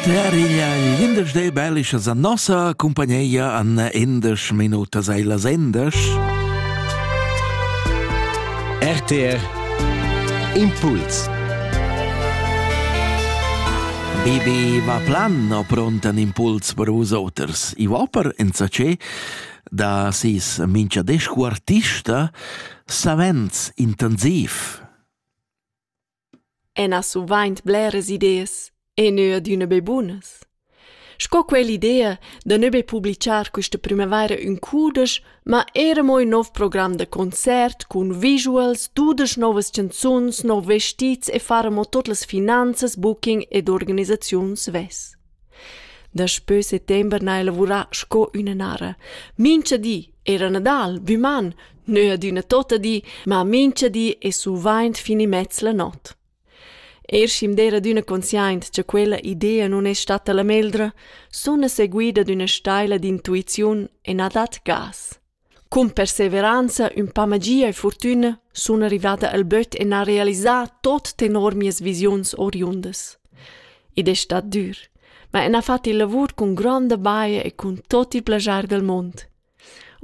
Per igl glindesdei bellischa za nossa cumpagneia an endesch minutas ei las endesch. RTR Impuls Bibi va plan no pront an impuls per us oters. I va per enzace da sis mincha descu artista savens intensiv. Enas suvaint bleras ideas e neu adüna be bunas. Sco quell'idea da neu be publichar quista primavaira ün cudesch, ma eira mo ün nouv program da concert cun visuals, dudesch nouvas chanzuns, nouv vestits e far amo tot las finanzas, booking ed organisaziun svess. Daspö settember n'haja lavurà sco üna nara. Mincha di era Nadal, büman, neu adüna tota di, ma mincha di es suvaint fin immez la not. Er schi'm d'eira adüna consciaint cha quella idea nun es statta la meglra, suna seguida d'üna staila d'intuiziun e na dat gas. Cun perseveranza, ün pa magia e furtüna sun rivada al böt e n'ha realisà tot tenor mias visiuns oriundas. Id es stat dür, ma ün ha fat il lavur cun gronda baja e cun tot il plaschar dal mund.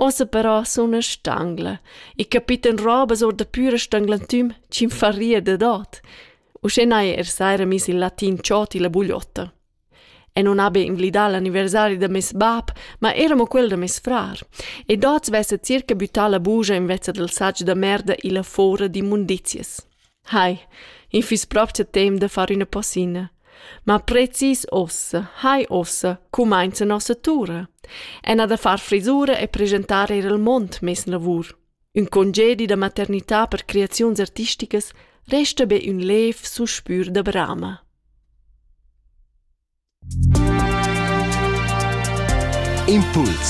Ossa però suna stangla e capita'm robas or da püra stanglantüm chi'm farria dad ot. Uschè n'haja er saira miss il latin Cioti la bugliotta. E non habi inglidà l'anniversari da meis bab, ma era mo quel da meis frar. Ed oz vessa circa büttà la bugia invezza dal satg da merda illa fora d'immundizias. Hai, in fiss propcha temp da far üna posina. Ma precis ossa, hai ossa, cumainza nossa tura. Ena da far frisura e presentar eir al mond meis lavur. Ün congedi da maternità per creaziuns artisticas resta be ün lev suspür da brama. Impuls